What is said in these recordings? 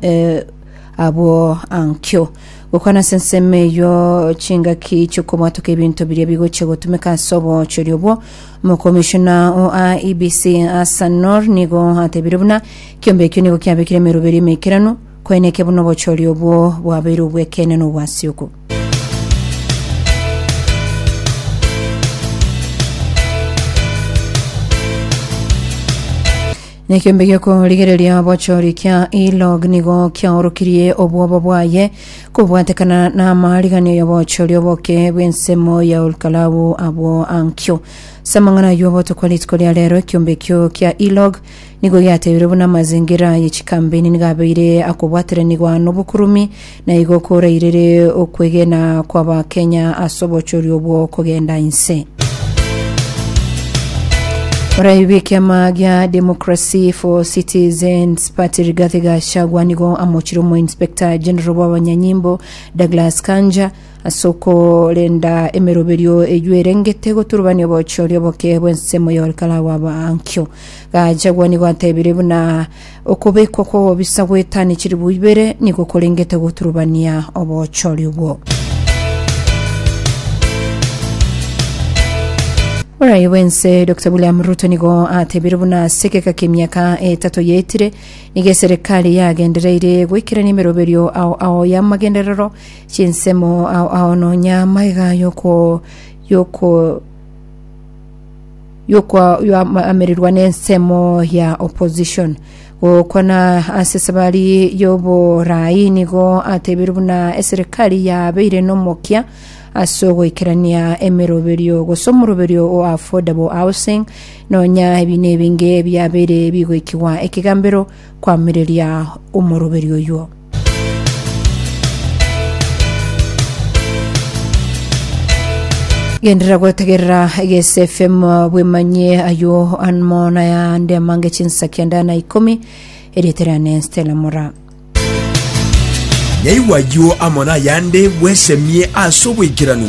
eh, abwo ankio gokwana ase ensemo eyo chingaki chiokobwatoka ebinto biria bigochia gotumeka ase obochori obwo omokomishona o IEBC Asanor nigo atebire buna kiombe ekio nigo kiabekire emeroberi emeikeranu koeneke buna obochori obwo bwabeire obwekeene na obwasiuku Nekembe gi'okorigereria obochori kia E-log nigo kiaorokirie obwoba bwaye kobwatekana namariganio y'obochori oboke bw'ensemo ya Olkalau abwo ankio. Ase amang'ana ayio obotuko rituko ria rero ekiombe ekio kia E-log nigo giateirwe buna amazingira ye chikambeni nigo abeire akobwateranigwa nobokurumi Na igo korairire okwegena kw'Abakenya ase obochoria obwo kogenda inse. Orai bw'ekiama gia Democracy for Citizens Party Rigathi Gachagua nigo amochire omoinspector general bw'abanyanyimbo Douglas Kanja ase okorenda emeroberio eyio erengete goturubania obochoria oboke bw'ensemo y'okorekana gw'abankio. Gachagua nigo atebire buna Okobekwa kw'obobisa gw'etani chilifu ibere nigo korengete goturubania obochori obwo. Orai bwense Dr William Ruto nigo atebire buna ase egeka kemiaka etato yaetire nigo eserekari yagendereire goikerania emeroberio ao ao y'amagenderero chinsemo ao ao nonya amaiga yoko yoko yokoamererwa n'ensemo ya opposition gokwana ase esabari y'oboraai nigo atebiru buna eserikari yabeire nomokia ase ogoikerania emeroberio gose omoroberio o affordable housing nonya ebi nebinge biabeire bigoikigwa ekegambero koamereria omoroberio oyuo Genderera gwetegerera egese FM bwemanye ayo anmo nayande amange chinsa kianda na ikomi eriete riane Stella Mora. Nyaigwa ayio amo nayande bwesemie ase oboikeranu.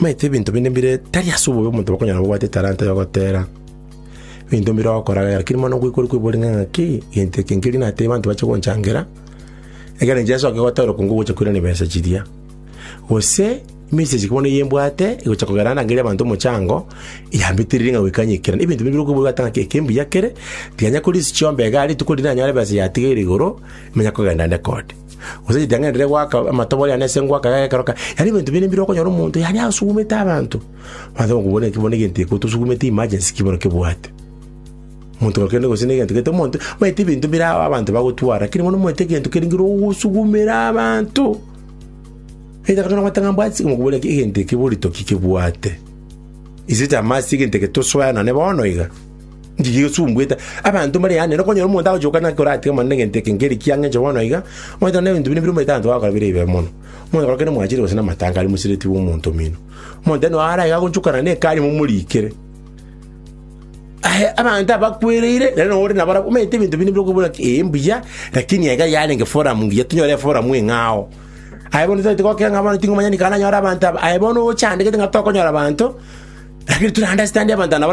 Maete ebinto binde mbire tari ase obobe omonto bakonyora bobwate etalanta y'ogotera ebinto mbire okoragera, keri mono ngoikwa ore kwebori ng'a ng'aki gento eke nkeria natebie abanto bache gonchangera, ekero inche nsoke gotera okong'u gocha koirana ebesa chiria. Gose message bono eye mbwate egocha kogera ndangerie abanto omochango, yambetereiri ng'a goika nyekera. Na ebinto bire okoigwa ata ng'aki eke mbuya kere, tikanya kori chiomba iga rituko riria nanyore ebesa yatigeire igoro, manya kogenda nde kode. Gose ritang'ani riria gwaka amatobori ane ase engwaka yaye ekero kare, yaani ebinto binde mbire okonyora omonto yaani asugumete abanto. Mwansa bono kobua bono egento eke otosugumete emergency ki bono kebwate. Omonto oyo kende gose negento gete omonto, omanyete ebinto bire ao abanto bagotwara, rakini bono omanyete egento kere ngira ogosugumera abanto. Either kare nabwate ng'a mbwati mokobua ng'a egento eke borito ki kebwate. Is it a must egento eke tosoe nane bono iga? Inchuche igosumbwete abanto mbare yaane, nokonyora omonto agochoka naki koratike mono negento eke nkeri ki ang'enche bono iga, omanyete onde ebinto binde bire omanyete abanto bagokora bire ebibe mono. Omonto korokire omwachire gose namatanga aria mosireti bw'omonto omino. Omonto noyo ara iga agonchokana nekari momorikere. Aye abanto abakwereire, nere nonya ore nabarabwo, omanyete ebinto binde bire okobora ki ee mbuya, lakini aiga yarenge forum ngiya, tonyore eforum eng'ao. Aye bono totagete gokira ng'a bono ting'omanya nikare nanyore abanto aba, aye bono ochandegete ng'a tokonyora abanto, lakini tore understand abanto aba nabare.